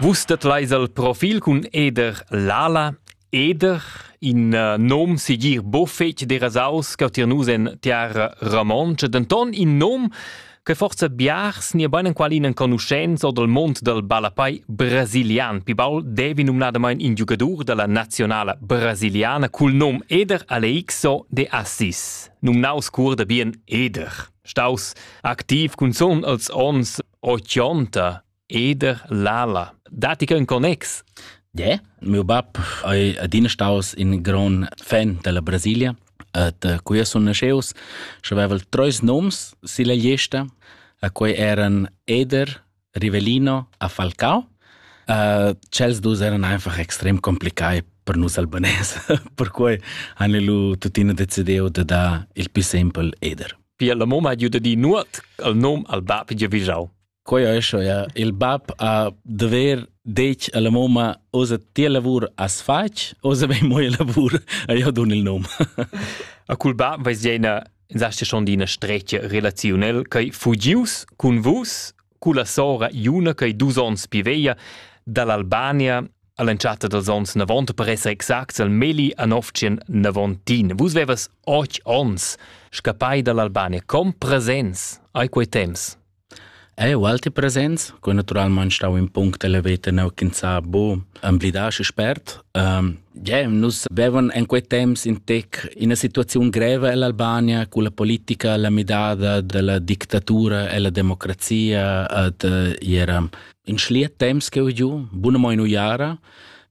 Vus dat leis al profil cun Eder Lala. Eder, in uh, nom segir buffet derasaus che tier nus en tiara romontscha, denton in nom che forza biars ni bein enqualin enconuschents o dal mond dal ballapai brasilian. Pi baul devi numnadamain in giugadur dalla nazionala brasiliana cul nom Eder Aleixo de Assis, numnaus cur da bien Eder. staus activ cunzun als ons 80 eder lala dati che un connex de meu bab ei adina staus in gran fan della brasilia et uh, qui sun nasceus și aveval treis noms silla lista a quei eran eder Rivelino a Falcao. Uh, Chels dus eran einfach extrem complicai per nus albanese, perquei han lu tuttina decidiu de dar il più simpel eder. Pia la mamma ha giu di nuot al nom al bab gia vigiau. Quei è schon, ja. Il bab ha dover detg alla mamma, osa tia lavur as fac, osa bei moi lavur, a io dun il nom. A cul bab veis ina Sasti schon d'ina stretga relaziunel ch'ei fugius cun vus, culla sora Iuna ch'ei dus onns pi veglia, dall'Albania all'entschatta dels onns 90 per esser exact al Meli Anovcien Navontin. Vus vevas och ons scappai dall'Albania, com presents ai quei temps? Ei ualti presents, quei naturalmein stau in punct elever teneu ch'ins ha buca emblidar schi spert. Ähm, yeah, nus vevan en quei temps in tec ina situaziun greva ell'Albania cu la politica, la midada dalla dictatura ella democrazia, et era in schliet temps cheu giu, bunamein uiara.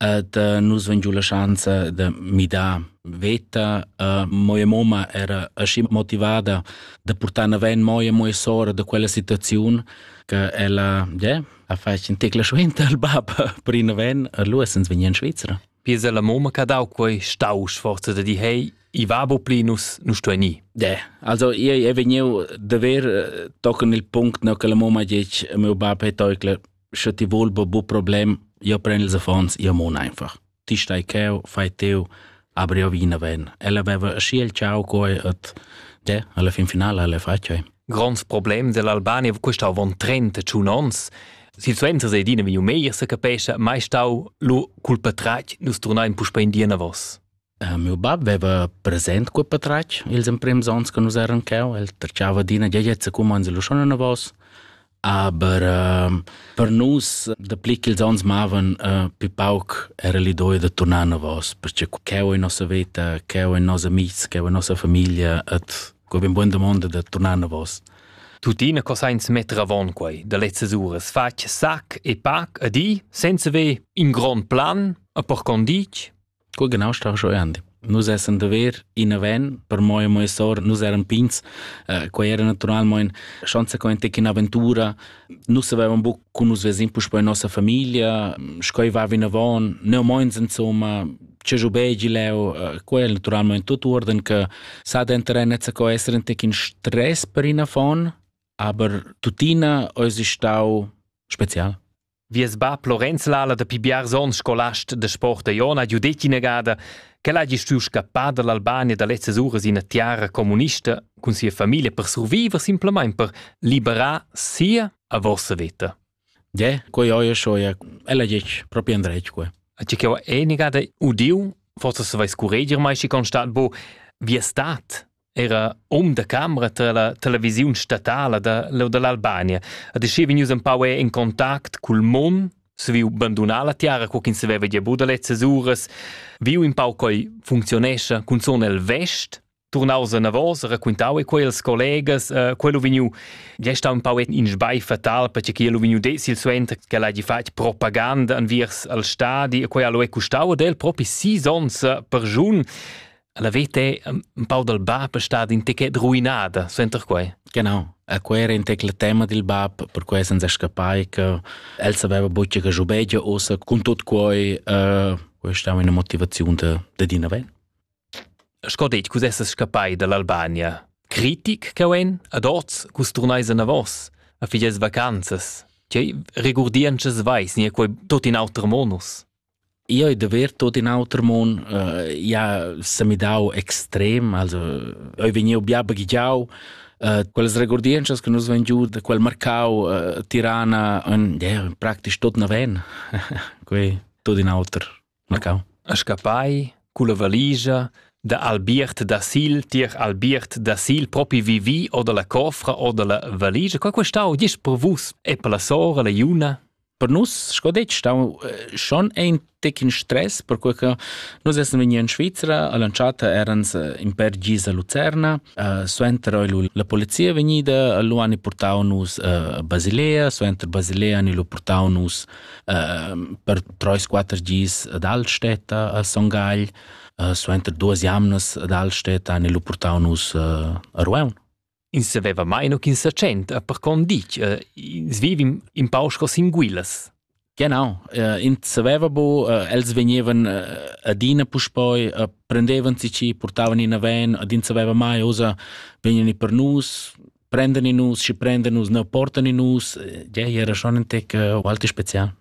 et uh, nus ven giu la schanza de midar veta uh, moia mamma era aschi motivada de portar aven moia moia sora de quella situaziun che ella yeah, ha fatg in tecla suenter al bab per in aven allora sens vegni in Svizzera Pisa la mamma che ha dau quei stau sforza de di hei i va bo pli nus nus sto ni De, also io è vegniu de ver eh, tochen il punct no che la mamma dice mio bab è toicla sche ti vuol be bu problem, io pren ils affons, io mon einfach. Ti stai cheu, fai teu, aber io vina ven. Ella aveva aschi il ciao coi et de, alla fin finale alle facciai. Gronds problem dell'Albania questa avon 31 ons. Situazione se dina via meglio se capesce mai stau lu culpa trac nus turnain puspa in dia vos. Miu bab veva present cul patratg ils emprems onns che nus eran cheu. El tracciava d'ina giagliezza cumonds e luschon anavos. Aber äh, per nus, dapli ch'ils onns mavan, äh, pi pauc era l'idea da tornar anavos, perché cheu in nossa veta, cheu in nossa amics, cheu in nossa famiglia, et co ben buona domanda da tornar anavos. Tuttina co sainz metter avon quei da lezzas uras fatg sac e pac a di, senza ver in grond plan, a per condic? Co genau sta jeu andi? Nus essan da ver ina van, per mo e mo e sor, nus eran pigns, uh, quei era naturalmein consequente che un'avventura. Nus avevan buc con nus vesin puspei in nossa famiglia, schoi va vinavon, neu meins insomma, ce giu begi leu, uh, quei era naturalmein tot uorden che sa denteren nezza co essere un tec in stress per ina von, aber tuttina eis stau spezial. Vies bab Lorenz Lala da pi biars onns scolast de sport da Iona ha giu detg inagada ch'el hagi stuiu scappar dall'Albania da lezzas uras ina tiara communista cun sia famiglia per surviver simplamain per liberar sia a vossa veta. Je, quei oie soia, ella gec proprio andretque. A ci ch'eu enigada udiu, forse se vais curreger mai si constat bo, vi è stat era um da camera tra la televisiun statala da leu dall'Albania ha deschia vegnius empau in contact cul Mon saviu bandunar la tiara co ch'ins saveva gia buca da lezzas uras viu in pau coi funzionescha cunzun el vest turnaus anavos raquintau e quels collegas uh, quello vegniu gia stau un pau in sbai fatal perché che lu vegniu decil suenter che l'hagi fatg propaganda anviers al stadi e quei lu è custau ad el propi sis ons per giun La veta è un pau dal bab è stata in techet ruinada, suenter quai. Genau. E quel era in tecla tema del bab, per cui senza scappai che el sapeva bucce che giubegia ossa con tot quai, uh, questa è una motivazione de, de Dina Ven. Sco detg, cus essas scappai dall'Albania. Critic che en, ad oz, cus turnais a vos, a figes vacanzas. Tgei regurdiances vais, nie quei tot in auter monus? Io ei daver tut in auter mun, uh, ia s'ha midau extrem, also eu vegniu bia baghegiau, uh, quellas regurdientschas che nus vein giu da quel marcau uh, Tirana en, yeah, praktisch tot naven, quei tut in auter marcau. A scappai culla valigia da Albiert da Sil, tier Albiert da Sil, propi vivi o dalla cofra o dalla valigia, qua questau gist per vus e per la sora, la Iuna? per nus sco detg stau schon ein tec in stress perque che nus essen vegni in Svizzera all'entschatta erans in per gis a Lucerna suenter oi la polizia vegnida lu han portau nus a Basilea suenter Basilea han lu portau nus per treis quater gis ad Altstädter a Son Gagl suenter duas jamnas ad Altstädter han lu portau nus a Rueun Ins saveva mai no ch'ins sa tschent, per con ditg, uh, ins vivim in pau sco sin guilas. Genau, uh, ins saveva bu, uh, els vegnevan uh, adina puspoi, uh, prendevan si ci, portavan in aven, ad ins saveva mai, osa, vegnan per nus, prendani nus, ci prendani nus, ne portani nus, ja, era schon ein tec uh, ualti spezial.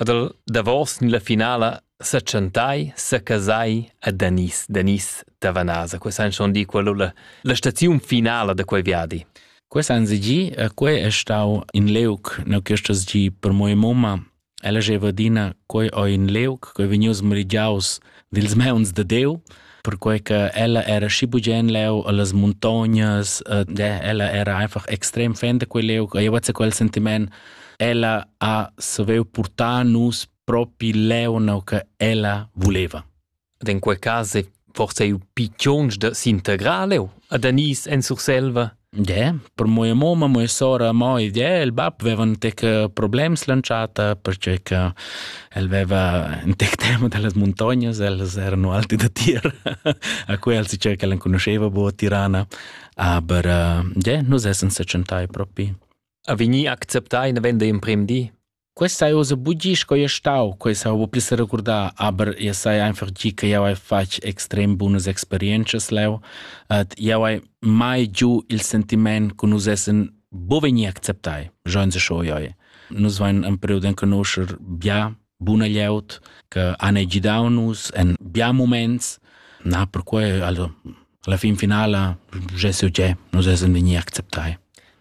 Ad el davos ni la finala setschentai, secasai a Danis, Danis da Vanasa. Quei san schon dir quello la, la staziun finala da quei viadi. Questa han gì e quei è stau in leuc, no questo gi per mia mamma. Ella jeva dina quei o in leuc, quei vegnius merigiaus dils meuns de Deu, perquei che ella era schi bugen leu allas montognas, eh, ella era einfach extrem fan de quel leu, e io quel sentiment, ella ha saviu portar nus propi leu no che ella voleva. Ed in quel caso forse eu piccions de s'integrar leu ad Anis en Surselva? Ie, per moia mamma, moia sora, mo ed ie, il bab veva ün tec problems l'entschatta perche che el veva ün tec tema da las muntognas, ellas erano alte da tir, a quels di circa l'enconuscheva bo a Tirana, aber ie, nus essan sechentai propi. Ha vegnì acceptà ina venda in prem di? Questa hai ussa bugi sco ei stau, quei sa buca pli seregurdar, aber jeu sai einfach gi che jau hai fatg extrem bunas experientschas leu et jau hai mai giu il sentiment che nus essen buca vegni acceptai, schon se schon joi. Nus vein in period en conoscer bia buna glieud che han gidau nus en bia moments. Na, perquei alla alla fin finala, je so je, nus essen vegni acceptai.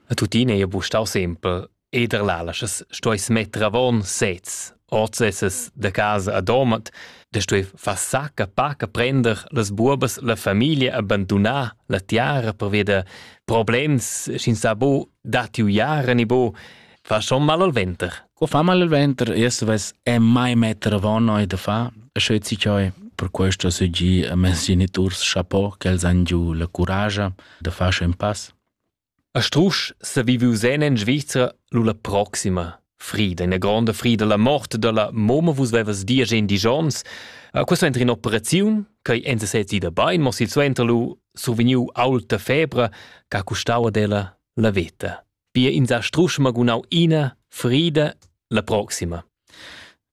E tuttina ei buc stau sempel Eder lalaschas stueis metter avon sez, ord sesas da casa a Domat, da stui far sacca paca prender las buobas la famiglia abbandunar la tiara per via da problems sc'ins sa bo datti uiara ni bo fa schon mal al venter. Qua fa mal al venter, erst ves è mai metter avon noi da fa, sche ci cioi per questo se gi a mes geniturs chapeau che els han giu la courage da far un pass. A strusch s'ha viviu zen en Svizra lu la proxima frida, ina gronda frida, la mort dalla momma. Vus vevas di agen diesch onns. Eh, Quei suenter in'operaziun ch'ei enza sez ida bein, mo silsuenter lu survegniu aulta febra ch'ha custau ad ella la veta. Pia ins ha strusch magunau ina frida, la proxima.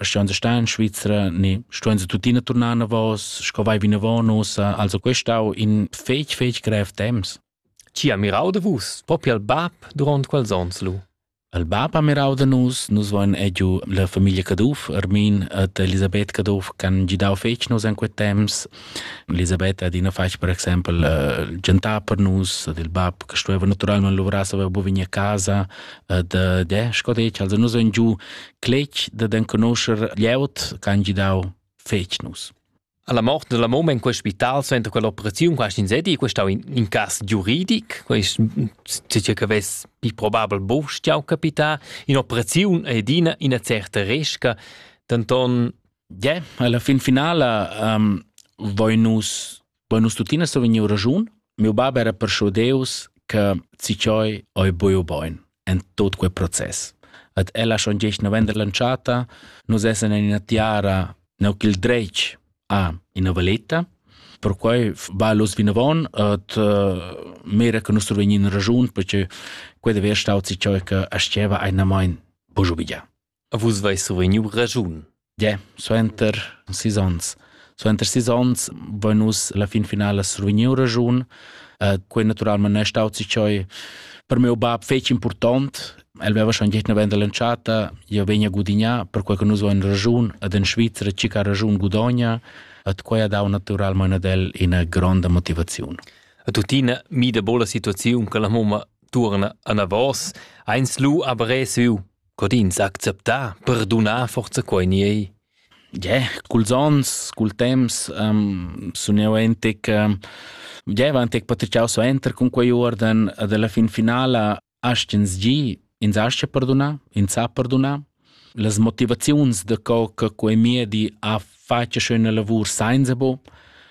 Ston se star in Svizzera, ne ston se tuttina tornar navos, sco vai vinavon usa, also questau in fec fec grev temps. Ci ha mirau de vus, propi al bab durant quels ons lu. Al bab ha mirau de nus, nus voin egiu la famiglia Caduff, Armin et Elisabeth Caduff, can gidau fec nus in quet temps. Elisabeth ad ina fac, per exempel, uh, gentar per nus, ad il bab, che stueva naturalmente lavorar, aveva bovini a casa, ad, uh, de, sco dec, also nus voin giu cletg dad enconoscher glieud che han gidau fetg nus. Alla morte della mamma in quel spital suenter quell'operazione quasi in sedi questo in, in cas giuridic questo dice che ves pi probabel bovstiau capita in operazione ed in una certa resca tanton yeah alla fin finale um, voi nus Poi nus tuttina sto vegnir raschun, mio bab era perschudeus che Ciccioi oi buio boin en tot quei process. At ella schon gest november lanciata, nus essen in ina tiara neu il dretg a ina valetta. Perquai va los vinavon et uh, mira che nus survegnin ragiun perché quei deve stau Ciccioi che asceva einamain bugiu vigia. A vus veis survegniu raschun. Yeah, suenter sis onns. Suenter sis onns vein nus la fin finala survegniu raschun. Uh, quei naturalment è staut sich choi per meu bab fetg important. El veva schon gehna venda l'entschatta, io vegna gudignà, per quei che nus vein raschun ad en Svizzera cica raschun gudogna, at quei ha dau naturalment ad el ina gronda motivaziun. A tutina mi da bola situaziun che la mamma turna anavos, eins lu aber resu co d'ins acceptar, perdunar forza quei ni ei. Yeah, culs onns, cul temps um, sun jeu entec, um, yeah, va entec patriciau suenter cun quei uorden ed alla fin finala astg'ins gi, ins astga perdunar, ins sa perdunar. Las motivaziuns da co che quei miedi ha fatg schöne lavur sainza bo,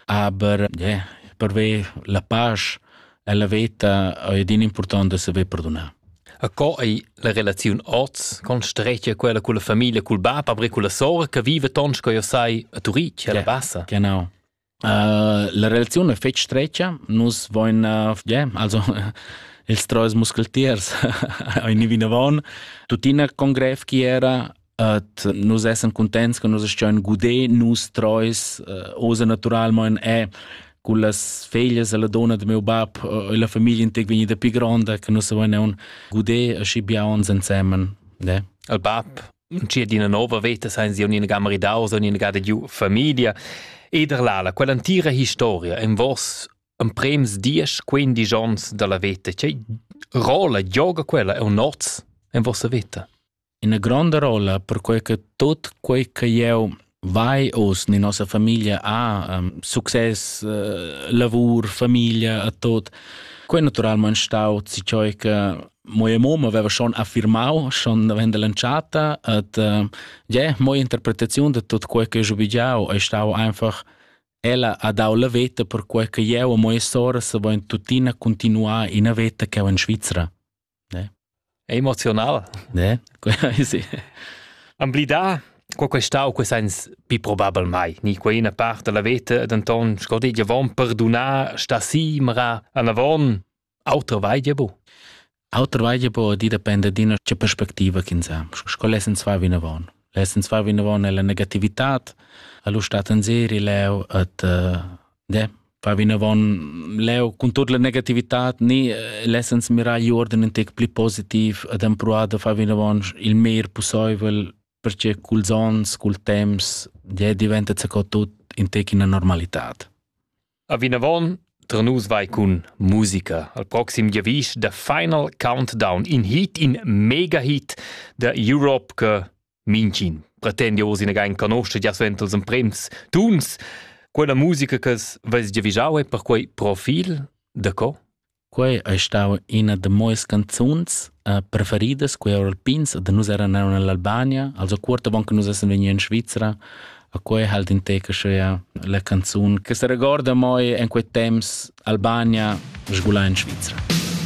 aber yeah, per ve la pace Ella veta ei din impurtont da saver perdunar. A co ei la relaziun oz con strecia quella con la famiglia, col bab, aber con la sora che vive tons co io sai a Turitg, alla bassa? Genau. Uh, la relazione è fetg streccia, nus voin, uh, yeah, also ils treis muscletiers, ein vinavon, tuttina con grev chi era, Et nus essem contents che nus astgein guder nus treis uh, osa naturalmein è con las feglias e la donna de meu bab e la famiglia integ vegnida più gronda che nus avein un guder aschi bia uns insemen ne al bab cia d'ina nova veta sein sie un'inga maridau so un'inga de giu famiglia ed erlala quell'antira historia en vos en prems dies quindi gions dalla veta che rola yoga quella è un noz en vossa veta ina gronda rolla, perquei che tut quei che jeu vai oz ni nossa famiglia ha, um, success, uh, lavur, famiglia, a tot, quei naturalmein stau cioi che moja mom aveva schon affirmau schon avendo lanciata et uh, ja moja interpretaziun de tot quei che giubigiau è stau einfach ella ha dau la veta per quei che jeu e moja sora se voin tuttina continuar in veta che in Svizzera ne emozional ne sì amblidà qua questà u quest'ans pi probabel mai ni quai ina part della veta denton sco dit avon perdunar sta simra anavon auter vai dir bu Auter weide bo di depende d'ina che perspectiva ch'ins ha. Sco lesen zwei vinavon. Lesen zwei vinavon è la negativitat, allo stat en serie leu et uh, De, va vinavon leu cun tut la negativitad ni eh, lessens mirar igl uorden in tec pli positiv ad empruar da far vinavon il meir pusseivel perché culs ons, cul temps, ja diventa co tut in tec in normalitad. A vinavon Tra nus vai cun musica al proxim giavisch da Final Countdown, in hit, in mega hit da Europe che Mincin pretendia oz ina gain canoscha gia suenter els emprems tuns. Quella musica che veis già vigiau è perquei profil da co? Quei ei stau ina da moes canzuns uh, preferidas, quei Alpins, da nus eran eran nell'Albania, also cuorta bon che nus essen vegni in Svizzera. A quei halt in teca schea la canzun che se regorda moi en quei temps Albania sgula in Svizzera.